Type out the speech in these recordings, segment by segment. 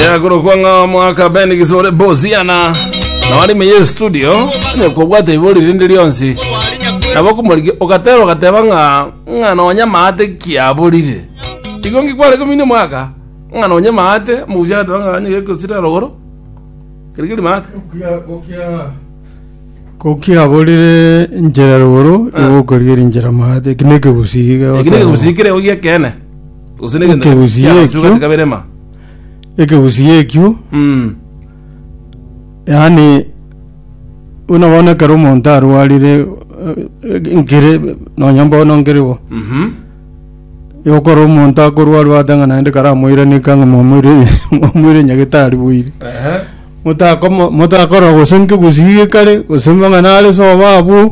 yakorokwa ng'a mwaka ben gisore bosiana nawarime ye studio nekobwata ibori rinde rionsi nabo kumoriki ogateba ogateba ng'a ng'a nonya maate kiaborire igo ngikware komini mwaka ng'a nonya maate mugucha agateba ng'a onye gekosira rogoro keri keri maate kokiaborire njera rogoro igokorigeria njera maate eki nekegusii eki nekegusii kere igo giekene Gose ne egento Ekegusii kiagosigwe ekio. gati kabirema. ekegusii ekio Mm. yaani buna bono ekero omonto arwarire eh, nkere nonya mbono nkere bo Mhm. yokora omonto akorwarwa ate ng'a naende karamoiranika ng'a mwamoire mwamoire nyagetari boire Ehe. motakoma motakora gose nkegusii gekare gose mang'ana are soba abwo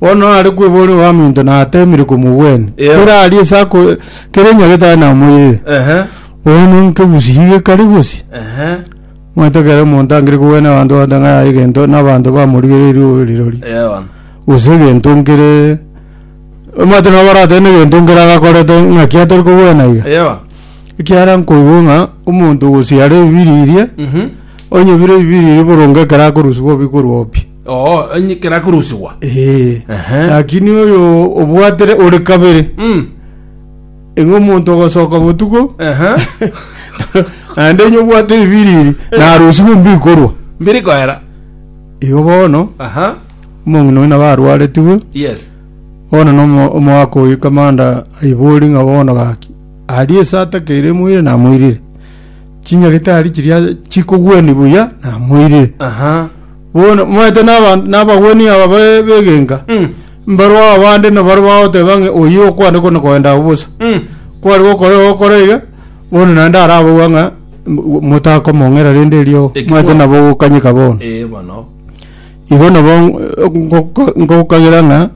Bono are kweboria obaminto na atemire komogwenia. Yeo. Kera aria ase ako- kera onye getari namoirire. Ehe. Bono nkegusi iga ekari gosi. Ehe. Omanyete ekero omonto angire kogwenia abanto bagote ng'a yaye egento na abanto bamorigereiri oyo rirori. Yeo bono. Gose egento nkere omanyete nabo baratebe na egento nkere agakorete ng'aki atori kogwena iga. Yeo bono. Ekiagera nkoigwa ng'a omonto gosibare ebibiri eria Mhm. onye bire ebibiri eria boronge ekero akorusia bobi korwa obi. Oo, enye- kera korusigwa. Eh. Ehe. lakini oyo obwatere ore kabere Mm. eng'e omonto ogosoka botuko Ehe. naende enye obwate ebibiri eri narusigwe mbikorwa Mbiri koera. igo bono Aha. omong'ina oyo nabo arwaretigwe Yes. bono nomo- omogaka oyo kamanda aibori ng'a bono gaki aria esata kere moire namoirire chinyagitari chiria chikogwenia buya namoirire Aha. Bono moete n'aban- n'abagwenia aba be- b'egenka, Mm. mbarwo aba bande nabaria bagoteba ng'a oyio okwane kona koenda agwo bosa. Mm. Kware gokora ogokora iga, bono naende arabogwa ng'a m- motakomong'era rende erio Eki moete bono. nabo ogokanyeka bono. Eh, bono. Igo nabo ngoka- ngokagera ng'a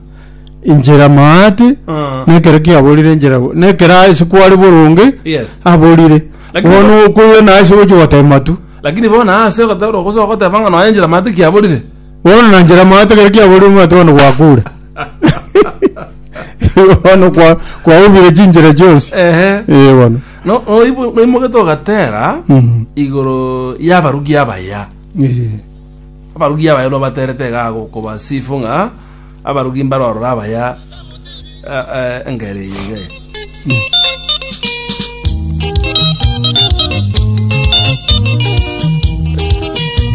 inchera maate Ah. nekero kiaborire inchera bo- nekero ase kware boronge Yes. aborire Lakini- bono okoira naye ase gochi gotema tu Lakini bono aase ogoteberwa ogosoa goteba ng'a nonya njera maate kiaborire. Bono na njera maate kare kiaborire omwate one gwakure. Bono kwa kwaubire chinjera chionsi. Ehe. Eh bono. No oibo noimogete ogatera Mhm. igoro y'abarugi abaya. Eh. Abarugi abaya nobaterete iga gokobasifu ng'a Abarogi mbarorora abaya engeera eye iga ere.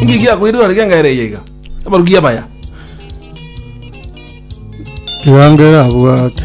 Inki kiakoirire orege engeera eye iga? Abarogi abaya. Tiga ngera abwate.